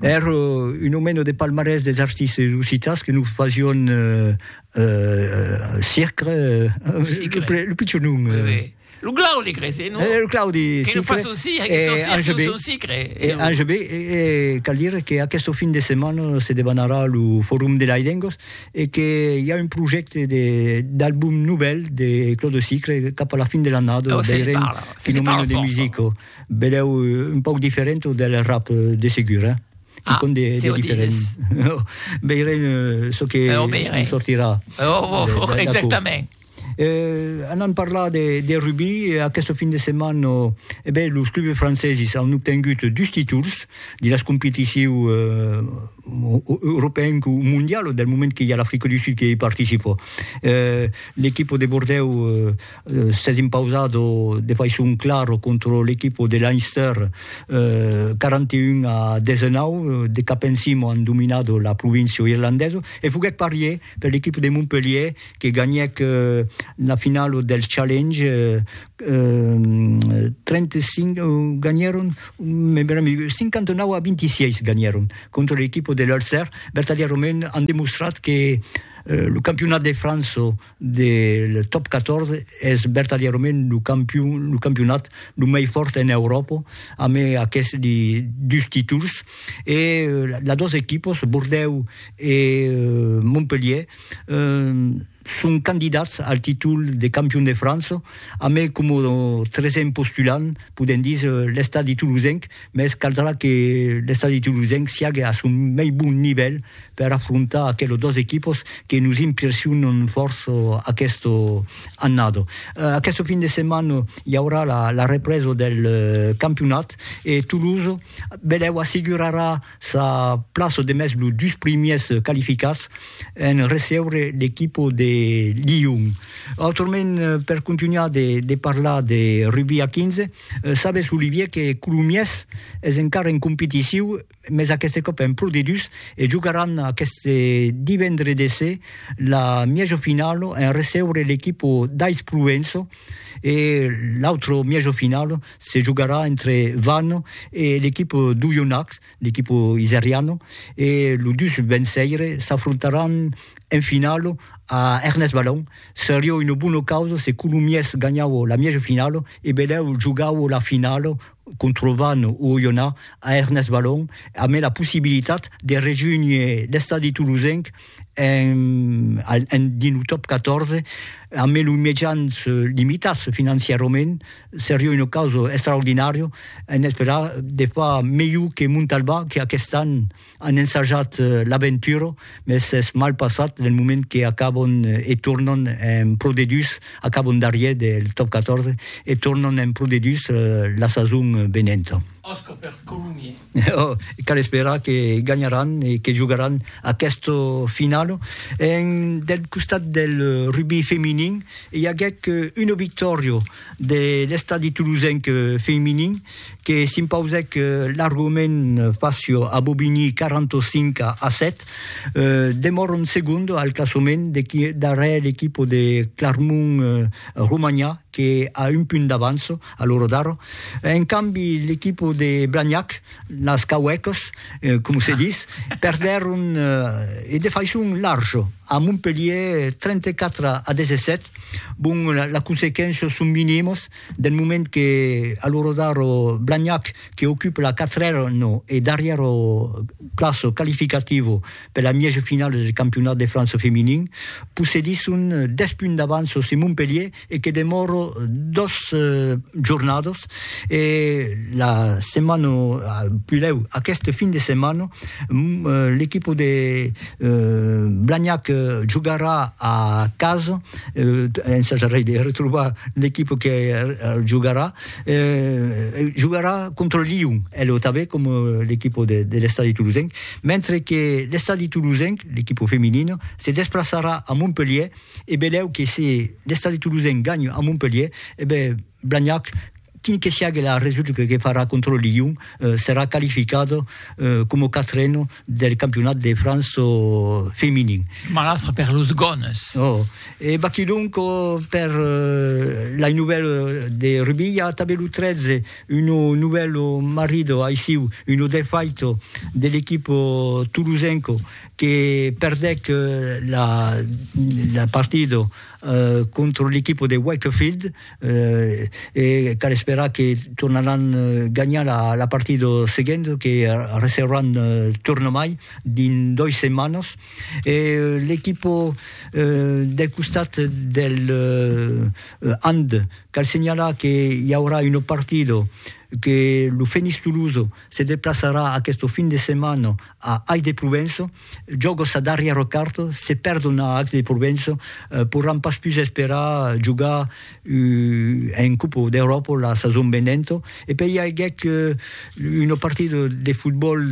Èr un o meno de palmarès des artistes occitans que nos fasion circre, lo pichon nom. Lo Claudi cre se non? Lo Claudi circre. Que nos fason circre, e Ange B. E cal dire que aqueste fin de setmana se debanarà lo forum de las lengas e que i a un projècte de d'album novèl de Claudi circre cap a la fin de l'annada, veirem fin o meno de musica. Belèu un pauc diferent del rap, de segur, eh? Ah, se o dides. Veirem çò que en sortirà. Exactament. Anant parlar de rugbi, aqueste fin de setmana, e ben, los clubs franceses an obtengut dus títols de las competicions europeenc o mondialas, del moment que i a l'Africa du Sud que i participa. L'equipa de Bordèu s'es impausat de faiçon clara contra l'equipa de Leinster, 41 a 19, de cap en cima an dominat la província irlandesa, e foguèt parier per l'equipa de Montpellier que ganhèc la finala del Challenge, 35 ganhèron, 59 a 26 ganhèron contra l'equipa de l'Ulster, vertadièrament an demostrat que lo campionat de França, de le top 14 es vertadièrament lo campion lo campionat lo mei fòrt en Euròpa amé aqueste li dus títols e las dos equipos Bordèu e Montpelhier son candidats al títol de campion de França amé coma tresen postulant podem díser l'Estadi Toulousenc mès caldrà que l'estadi tolosenc siague a son mei bon nivèl per afrontar aquelos dos equipos que nos impressionan fòrç aquesta annada. Aquesta fin de setmana i aurà la represa del campionat e Tolosa benlèu assegurarà sa plaça demest los dus primièrs qualificats en recebre l'equipa de Lion. Autrament, per contunhar de parlar de rugbi a 15, Sabes, Olivier, que Colomiers es encara en competiciu, mes aqueste còp en Pro D2, e jogaràn aqueste divendre de se la mièjo finalo en recebre l'equipo d'Ais Provenço e l'autre mièjo finalo se jogarà entre Vannes e l'equipo d'Oyonnax. l'equipo iseriano e lo 2 benseire s'afrontaràn en finalo a Ernest Balon. Serió una bona causa se Colomiers ganhavo la mièja finalo e Belèu jogavo la finalo contra Vannes o Oyonà a Ernest Balon amé la possibilitat de rejunhir l'estadi tolosenc en dins lo top 14 amé los mejans limitats financièrament Seria una causa extraordinària, en esperar de far melhor que Montalbà, que aquest an an ensajat l'aventura, mès s'es mal passat del moment que acaban e tornan en Pro D2, acaban darrièr del Top 14 e tornan en Pro D2 la sason venenta. Ò, cal esperar que ganharàn e que jogaràn aquesta finala. En del costat del rugbi feminin, i aguèc una victòria de l'Estadi Tolosenc feminin que s'impausèc largament fàcia a Bobigny 45 a 7. Demòran segonda al classament darrèr l'equipa de Clarmont Romanha que a un punt d'avança. a lo Rodaro. En cambi, l'equipo de Blagnac, las Cauècas, coma se dis, perdèron e de faiçon larja a Montpelhièr 34 a 17. Bon, las consequéncias son minimas del moment que a lo Rodaro Blagnac que ocupa la quatrèra e darrièra plaça qualificativa per la mièja finala del campionat de França feminin, possedisson 10 punts d'avança sus Montpelhièr, e que demòro dos jornadas e la setmana pulèu aqueste fin de setmana l'equipa de Blagnac jogarà a casa ensajarei de retrobar l'equipa que jogarà jogarà contra Lion e lo tanben coma l'equipa de l'estadi tolosenc mentre que l'estadi tolosenc l'equipa feminina se desplaçarà a Montpelhièr E belèu que se l'Estadi Toulousain ganha a Montpelhier, e ben Blagnac, quin que siague la resulta que farà contra Lyon, serà qualificat coma quatren del campionat de França feminin. Malastre per los Gones! Oh! E baquilhonc per lai novèl de Rubi, i a tanben lo 13, un novèl marrit aissiu, un defait de l'equip toulousain. que perdèc la partida contra l'equipa de Wakefield e cal esperar que tornaràn ganhar la partida seguenta que recebràn tornamai dins dois setmanas e l'equipa del costat del Hand cal senhalar que i aurà una partida que lo Fenix Tolosa se deplaçarà aquesta fin de setmana A Aix de Provenço, jògo sa darrièr carta, se perdon a Aix de Provenço, poràn pas pus esperar jogar en Copa d'Euròpa la sason venenta, e per i aguèt una partida de fotbòl,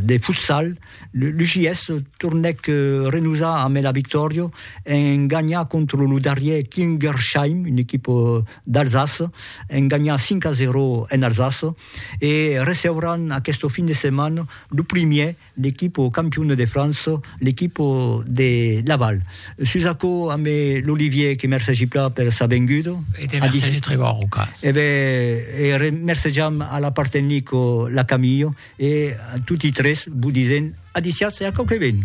de futsal, l'UJS tornèc renosar ambe la victòria en ganhar contra lo darrièr Kingersheim, una equipa d'Alsace, en ganhar 5 a 0 en Alsace, e receuràn aqueste fin de setmana lo primièr l'equipa campiona de França, l'equipa de Laval. Sus aquò, ambe l'Olivier que mercegi plan per sa venguda. E te mercegi tre bon, Rocas. E ben, e remercejam a la part tecnica la Camille, e a toti tres vos disent adiciatz e a quauque ben.